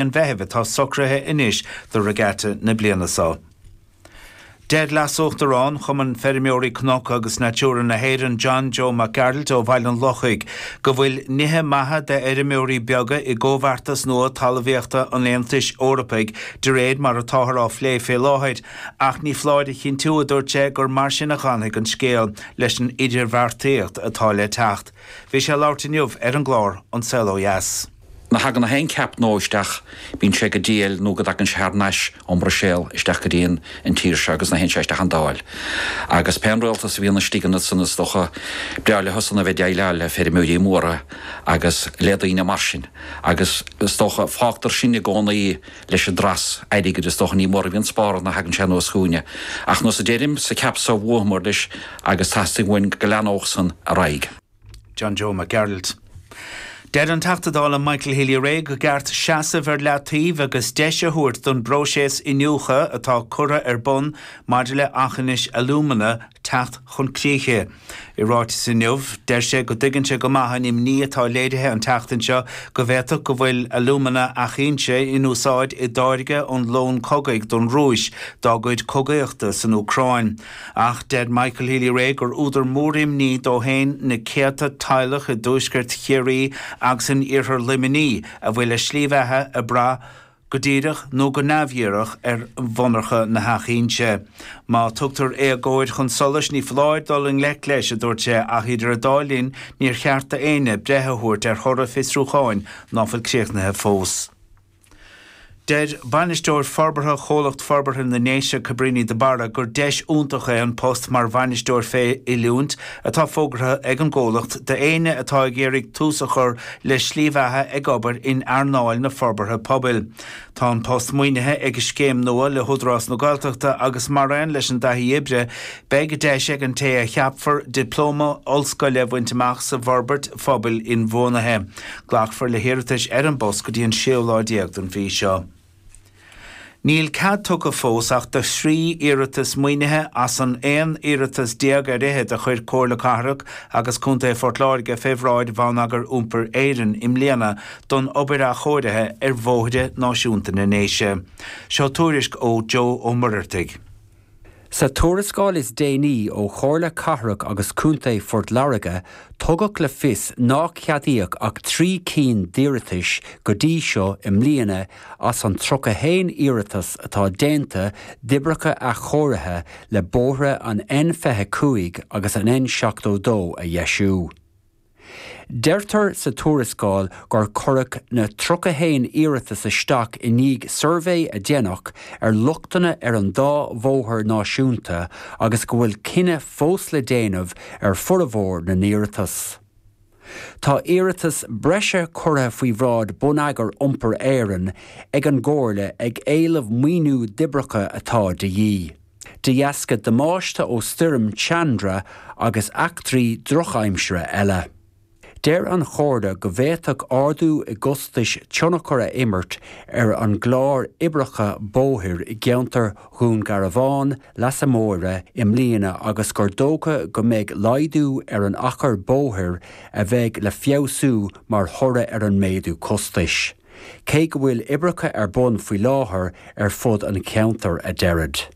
an Mheithimh atá socraithe anois do regatta na bliana so. Deir leasuachtarán Chumann Feirmeoirí Cnoc agus Natura na hÉireann, John Joe Mac Gearailt ó Bhaile an Lochaigh, go bhfuil nithe maithe d'fheirmeoirí beaga i gcomhbheartas nua talmhaíochta an Aontais Eorpaigh de réir mar atáthar á phlé fé láthair, ach ní foláir a chinntiú, a dúirt sé, gur mar sin a dh'fhanfaidh an scéal leis an idirbheartaíocht atá le teacht. Bhí sé ag labhairt inniu ar an gclár An Saol Ó Dheas. Nuair a thagann aon cheap nua isteach, bíonn sé go diail nó go dtagann sé thar nais ón mBruiséal isteach go dtí an tír seo agus nuair a théann sé isteach an Dáil. Agus pé an Rialtas a bhíonn istigh ansan is dócha b'fhearr leothusan a bheith déileáil le feirmeoirí móra agus le daoine mar sin agus is dócha fágtar sinne i gcónaí leis an dras airgid is dócha ní mór a bhíonn spártha nuair a thagann sé anuas chugainne. Ach faoi mar a deirim, sa ceap so bhuadhmair leis agus teastaíonn uainn go leanódh san ar aghaidh. John Joe Mac Gearailt. Deir an Teachta Dála Michael Healy-Rae gur ceart seasamh ar leataobh agus deis a thabhairt don bpróiseas iniúchtha atá curtha ar bun maidir le Eachinis Alumina teacht chun críche. I ráiteas inniu, deir sé go dtuigeann sé go maith an imní atá léirithe an tseachtain seo go bhféadfadh go bhfuil alumina Eachinse in úsáid i dtáirgeadh lón cogaidh don Rúis dá gcuid cogaíochta san Úcráin. Ach deir Michael Healy-Rae gur údar mór imní dó féin na céadta teaghlach i dtuaisceart Chiarraí agus in iarthar Luimnigh a bhfuil a slí bheatha ag brath, go díreach nó go neamhdhíreach, ar mhonarcha na hEachinse. Má tugtar éagóir chun solais ní foláir dul i ngleic leis, a dúirt sé, ach idir an dá linn níor cheart do éinne breith a thabhairt ar thoradh fiosrúcháin ná fuil críochnaithe fós. Deir Bainisteoir Forbartha Chomhlacht Forbartha na nDéise Cabrini de Barra gur deis iontach é an post mar Bhainisteoir fé Oiliúint atá fógartha ag an gcomhlacht do éinne atá ag iarraidh tús a chur le slí bheatha ag obair in earnáil na forbartha pobail. Tá an post maoinithe ag scéim nua le hÚdarás na Gaeltachta agus maraon leis an dtaithí oibre Beidh deis ag an té a cheapfar Dioplóma Ollscoile a bhaint amach sa bhForbairt Phobail Inbhuanaithe. Glacfar le hiarratais ar an bpost go dtí an séú lá déag den mhí seo. Níl cead tugtha fós ach do thrí iarratas maoinithe as an aon iarratas déag ar fhichead a chuir Comhairle Cathrach agus Contae Phort Láirge fé bhráid Bhonneagar Iompair Éireann i mbliana don obair athchóirithe ar Bhóithre Náisiúnta na nDéise. Seo tuairisc ó Joe Ó Muirheartaigh. Sa tuarascáil is déanaí ó Chomhairle Cathrach agus Contae Phort Láirge tugadh le fios nár ceadaíodh ach trí cinn d'iarratais go dtí seo i mbliana as an 31 iarratas atá déanta d'oibreacha athchóirithe le bóithre an N25 agus an N72 a dheisiú. Deirtear sa tuarascáil gur cuireadh na 31 iarratas isteach i ndiaidh suirbhé a déanadh ar lochtanna ar an dá bhóthar náisiúnta agus go bhfuil cinneadh fós le déanamh ar formhór na n-iarratas. Tá iarratas breise curtha faoi bhráid Bonneagar Iompair Éireann ag an gComhairle ag éileamh maoiniú d'oibreacha atá de dhíth. De dheasca damáiste ó stoirm Chandra agus eachtraí drochaimsire eile, deir an Chomhairle go bhféadfadh ardú i gcostais tionchar a imirt ar an gclár oibreacha bóthair i gceantar Dhún Garbhán Leasa Móire i mbliana agus gur dócha go mbeidh laghdú ar an achar bóthair a bheidh le feabhsú mar thoradh ar an méadú costais. cé go bhfuil oibreacha ar bun faoi láthair ar fud an cheantair, a deirid.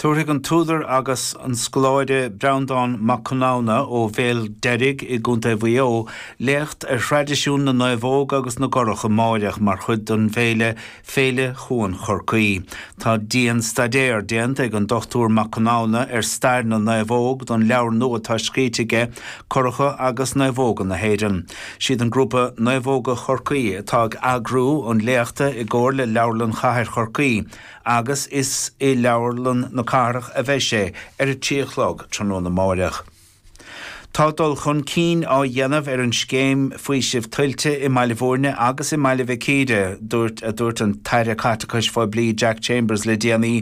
Tabharfaidh an t-údar agus an scoláire Breandán Mac Conamhna ó Bhéal Deirg i gContae Mhaigh Eo léacht ar thraidisiún na naomhóg agus na gcurach amáireach mar chuid den bhféile Féile Chuan Chorcaí. Tá dianstaidéar déanta ag an Dr Mac Conamhna ar stair na naomhóg don leabhar nua atá scríte aige, Curacha agus Naomhóga na hÉireann. Siad an grúpa Naomhóga Chorcaí atá ag eagrú an léachta i gcomhar le Leabharlann Chathair Chorcaí agus is i Leabharlann na Cathrach a bheidh sé ar a trí a chlog tráthnóna máireach. Tá dul chun cinn á dhéanamh ar an scéim faoisimh tuilte i mBaile Bhúirne agus i mBaile Mhic Íre, dúirt a dúirt an tAire Caiteachais Phoiblí Jack Chambers le déanaí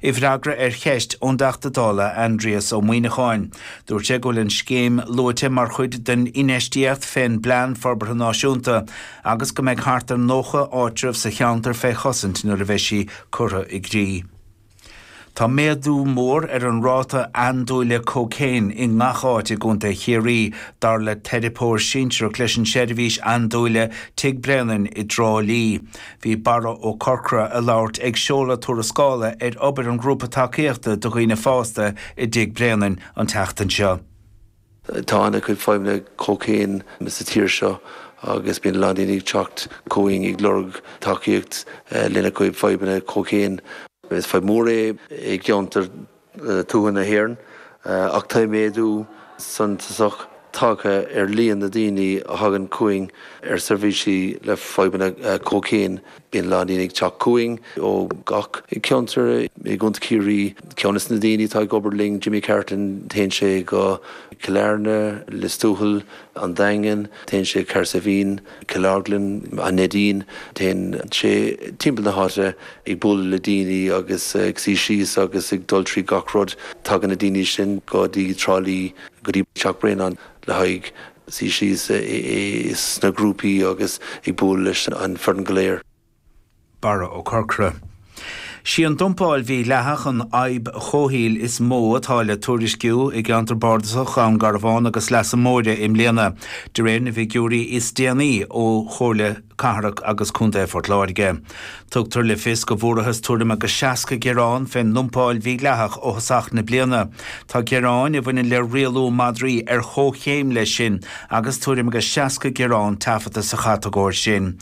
i bhfreagra ar cheist ón dTeachta Dála Aindrias Ó Muíneacháin. Dúirt sé go bhfuil an scéim luaite mar chuid den infheistíocht fén bPlean Forbartha Náisiúnta agus go mbeidh thart ar 90 áitreabh sa cheantar fé chosaint nuair a bheidh sí curtha i gcrích. Tá méadú mór ar an ráta andúile cócaoin i ngach áit i gContae Chiarraí, dar le teiripeoir sinsearach leis an seirbhís andúile Tigh Bhréanainn i dTrá Lí. Bhí Barra Ó Corcra ag labhairt ag seoladh tuarascála ar obair an Ghrúpa Tacaíochta do Dhaoine Fásta i dTigh Bhréanainn an tseachtain seo. Tá ana chuid fadhbanna cócaoin sa tír seo agus bíonn a lán daoine ag teacht chugainn ag lorg tacaíocht lena chuid fadhbanna cócaoin. Is fadhb mór é i gceantair tuaithe na hÉireann ach tá méadú suntasach tagtha ar líon na daoine a thagann chugainn ar seirbhísí le fadhbanna cócaoin. Bíonn a lán daoine ag teacht chugainn ó gach ceantar i gContae Chiarraí. Ceann des na daoine atá ag obair linn, Jimmy Carton, téann sé go Cill Airne, Lios Tuathail, An Daingean, téann sé Cahersiveen, Cill Orglan, An Neidín. Téann sé timpeall na háite ag bualadh le daoine agus ag suí síos agus ag dul trí gach rud. Tagann na daoine sin go dtí Trá Lí, go dtí Teach Bréanainn. le haghaidh suí síos sna grúpaí agus ag bualadh leis an foireann go léir. Barra Ó Corcra. Sí an dumpáil mhídhleathach an fhadhb chomhshaoil is mó atá le tuairisciú i gceantar Bardasach Ghleann Garbhán agus Leasa Móire i mbliana, de réir na bhfigiúirí is déanaí ó Chomhairle na. Cathrach agus Contae Phort Láirge. Tugtar le fios go bhfuarthas tuairim agus 60 gearán fén ndumpáil mhídhleathach ó thosach na bliana. Tá gearáin a bhaineann le rialú madraí ar chomhchéim leis sin agus tuairim agus 60 gearán taifeadta sa chatagóir sin.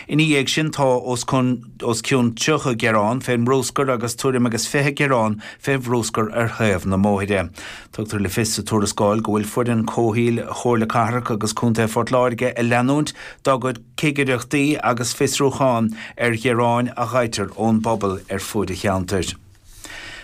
Ina dhiaidh sin tá os cionn 30 gearán fén mbrúscar agus tuairim agus 20 gearán fé bhrúscar ar thaobh na mbóithre. Tugtar le fios sa tuarascáil go bhfuil foireann comhshaoil Chomhairle Cathrach agus Contae Phort Láirge ag leanúint dá gcuid cigireachtaí agus fiosrúchán ar ghearáin a fhaightear ón bpobal ar fuaid an cheantair.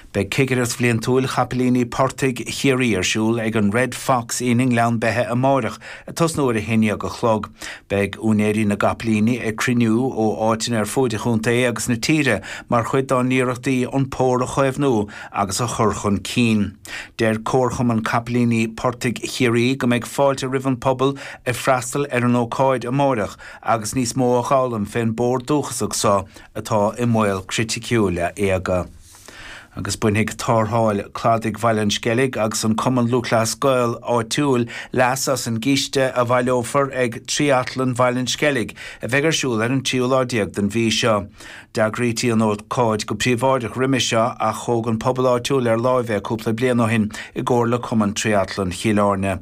Beidh cigireacht bhliantúil chapaillíní portaigh Chiarraí ar siúl ag an Red Fox Inn i nGleann Beithe amáireach ag tosnú ar a haon dhéag a chlog. Beidh úinéirí na gcapaillíní ag cruinniú ó áiteanna ar fuaid an chontae agus na tíre mar chuid dá n-iarrachtaí an pór a chaomhnú agus a chur chun cinn. Deir Comharchumann Capaillíní Portaigh Chiarraí go mbeidh fáilte roimh an pobal ag freastal ar an ócáid amáireach agus níos mó a dh'fhoghlaim fén bpór dúchasach so atá i mbaol criticiúil éaga. Agus bainfidh Tarrtháil Cladaigh Bhaile an Sceilg agus an Cumann Lúthchleas Gael áitiúil leas as an gcíste a bhaileófar ag Tríatlan Bhaile an Sceilg a bheidh ar siúl ar an tríú lá déag den mhí seo. D'eagraítí an ócáid go príobháideach roimis seo ach thóg an pobal áitiúil ar láimh é cúpla bliain ó shin i gcomhar le Cumann Tríatlan Chill Áirne.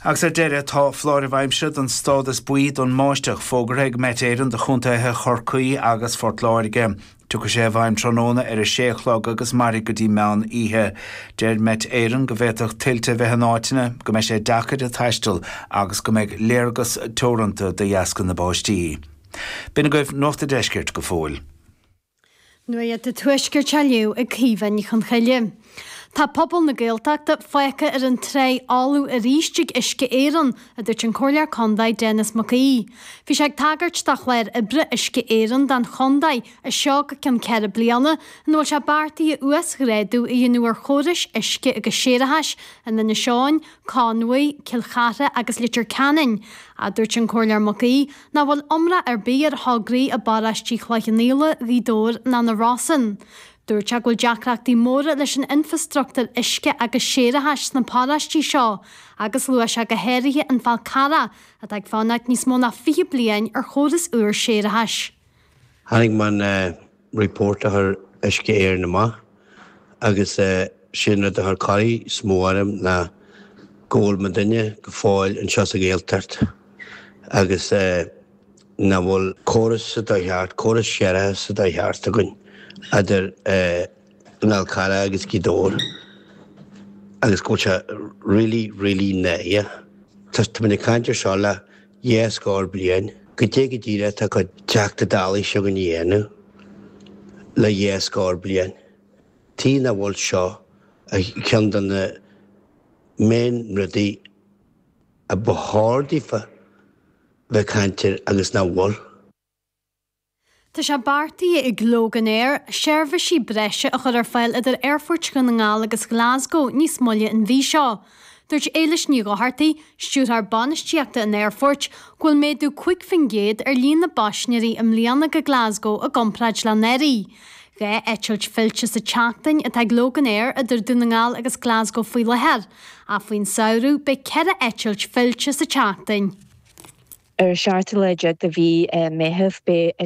Agus ar deireadh, tá foláireamh aimsire don stádas buí don mbáisteach fógartha ag Met Éireann do chontaetha Chorcaí agus Phort Láirge. Tiocfaidh sé i bhfeidhm tráthnóna ar a sé a chlog agus mairfidh go dtí meán oíche. Deir Met Éireann go bhféadfadh tuilte a bheith in áiteanna, go mbeidh sé deacair taisteal agus go mbeidh léargas teoranta de dheasca na báistí. B'in agaibh Nuacht a' Deiscirt go fóill. Nuacht a' Tuaiscirt anois ag Caoimhe Ní Chonchoille. Tá pobal na Gaeltachta fágtha ar an dtráigh fholamh arís ag Uisce Éireann, a dúirt an Comhairleoir Contae Denis Mac Aoidh. Bhí sé ag tagairt do chlár oibre Uisce Éireann don chontae as seo go ceann ceithre bliana, ina bhfuil sé beartaithe uasghrádú a dhéanamh ar chórais uisce agus séarachais in Inis Eoghain, Conmhaigh, Cill Chartha agus Leitir Ceanainn, a dúirt an Comhairleoir Mac Aoidh. Nach bhfuil iomrá ar bith ar thograí i bparáistí Chloich Cheann Fhaola, Ghaoth Dobhair ná na Rosann. Dúirt sé go bhfuil deacrachtaí móra leis an infreastruchtúr uisce agus séarachais sna paráistí seo agus luaigh sé go háirithe an Fál Carrach atá ag fanacht níos mó ná 20 bliain ar chóras úr séarachais. Chonaic mé an report a chuir Uisce Éireann amach agus sé'n rud a chuir corraí is mó orm ná go bhfuil muidinne go fóill anseo sa Ghaeltacht agus nach bhfuil córas sa dóigh cheart, córas séarachais sa dóigh cheart againn idir an Fhál Carrach agus Gaoth Dobhair agus go bhfuil sé really, really náireach. Tá mé ag caint air seo le. Dhá scór bliain goidé go díreach atá cuid Teachta Dálaí seo againne a dhéanamh, le dhá scór bliain. Tuige nach bhfuil seo ar cheann de na main rudaí a ba chóir daofa bheith caint air agus nach bhfuil. Tá sé beartaithe ag Loganair seirbhísí breise a chur ar fáil idir Aerfort Dhún na nGall agus Glasgow níos moille an mhí seo. Dúirt Éilis Ní Dhochartaigh, Stiúrthóir Bainistíochta an aerfoirt, go bhfuil méadú 5 faoin gcéad ar líon na bpaisinéirí i mbliana go Glasgow i gcomparáid le anuraidh. Dhá eitilt fillte sa tseachtain atá ag Loganair idir Dún na nGall agus Glasgow faoi láthair, ach faoin samhradh beidh ceithre eitilt fillte sa tseachtain.